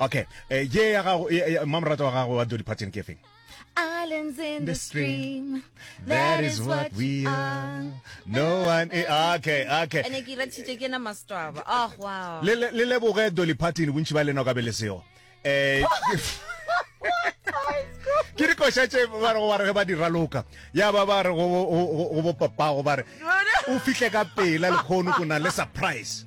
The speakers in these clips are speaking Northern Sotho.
okay eh, ye ya gago mmamorata wa gago wa dodi parton ke efeng Islands in the stream. That is what we are. No one. Is, ah, okay, okay. And ke ratshitse ke na mastwaba. Oh wow. Le le le boge Dolly Parton bontši ba leno ka bele seo. Eh ke re košatše ba re go ba re ge ba dira loka ya ba ba re go bopapago ba re o fihle ka pela lekgono ko na le surprise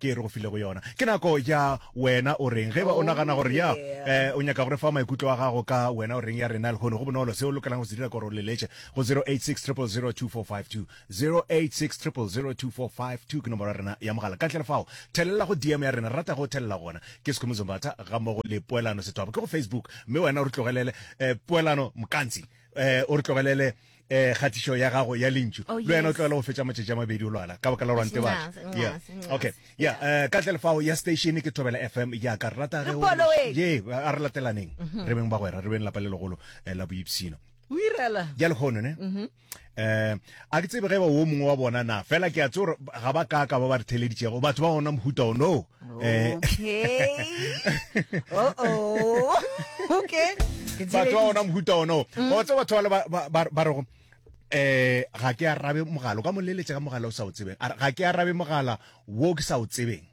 ke e re go filego yona ke nako ya wena o reng ge ba o nagana gore ya eh, o nyaka gore fa maikutlo a gago ka wena o reng ya rena lehono go bonolo se o lokelang go se dira kore o leletše go 0860002452 0860002452 ke nomoro ya rena ya mogala ka tlele fao thelela go dm ya rena rata go thelela gona ke sekhume zombatha ga mmogo le poelano sethwabo ke go facebook mme wena o re tlogelele eh, poelano mokantsi eh, o re tlogelele eh kgatišo ya gago ya lentšu oh, le wena o tlogela go fetša matšatši a mabedi o lwala ka baka la rwante ba okay ya eh, ka tle lefao ya station ke thobela fm ya ka rata ge ye a re latelaneng mhm. re beng ba gwera re beng lapa le legolo eh, la boipsino o irela ya lekgono ne mhm. eh a ke tsebe ge ba wo mongwe wa bona na fela ke a tsore ga ba ka ka ba ba re theleditšego batho ba gona mohuta o no Eh. Okay. oh oh. Okay. batho ba ona mohuta ono o mm. tse batho ba ba rego eh ga ke arabe mogala ka moleletse ka mogala o sa o tsebeng ga ke arabe mogala wo ke sa o tsebeng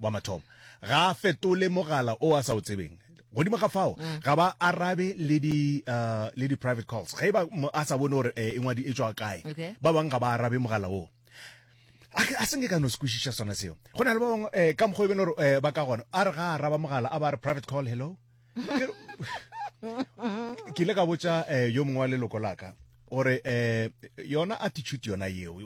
wa mathomo ga fetole mogala o a sa o tsebeng godimo ga fao mm. ga ba arabe le di uh, le di private calls ga e ba a sa bone gore eh, e ngwadi e tswa kae ba bang ga ba arabe mogala oo a se nke ka no se kwešiša sona seo go na le ba bangwe um ka mokgwa e bene gore um ba ka gona a re ga a raba mogala a ba re private call hello ke ile ka botša um yo mongwe wa leloko laka gore um yona attitude yona yeo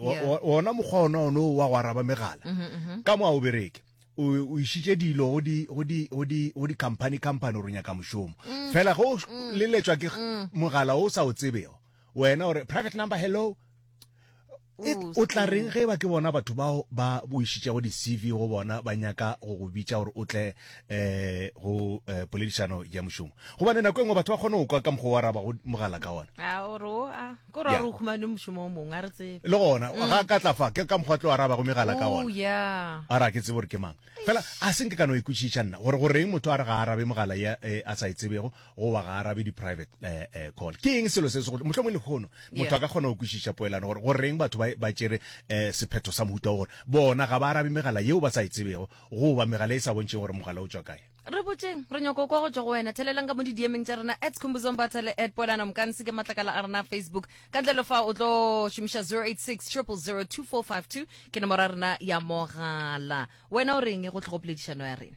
ona mokgwa ona one wa go araba megala mm-hmm, mm-hmm. ka mo a o bereke o išitše dilo go di-company company gore nyaka mošomo mm. fela go mm. leletswa ke mm. mogala o sa o tsebego wena gore private number hello It, o tla reng ge ba ke bona batho bao ba boišitšego di-cv go bona ba nyaka go go bitša gore o tle um go eh, poledišano ya mošomo gobane nako e nngwe batho ba kgone go kwa ka mokgwa wa raba go mogala ka ona a o re o a ko ra Yeah. re o humane mošomo o mongwe a re tsebe le gona ga ka tla fa ke ka mokgwa tlo wa raba go megala ka o ona ya a re a ke tsebe gore ke mang fela a se nke ka no ikwešiša nna gore goreng motho a re ga a arabe mogala ya eh, a sa e tsebego go ba ga arabe di-private eh, eh, call ke eng selo se segolo mohlomong lehono motho a ka kgona go kwešiša poelano gore go reng batho ba tšere um sephetho sa mohuta gore bona ga ba arabe megala yeo ba sa e tsebego goba megala e sa bontšheng gore mogala o tswa kae re botseng re nyoko kwa go tswa go wena thelelang ka mo didiemeng tša rena at khumbuzombata le at poelano mokanse ke matlakala a rena facebook ka ntle le fa o tlo šomiša 086 002452 ke nomoro ya rena ya mogala wena o reng go tlhogo poledišano ya rena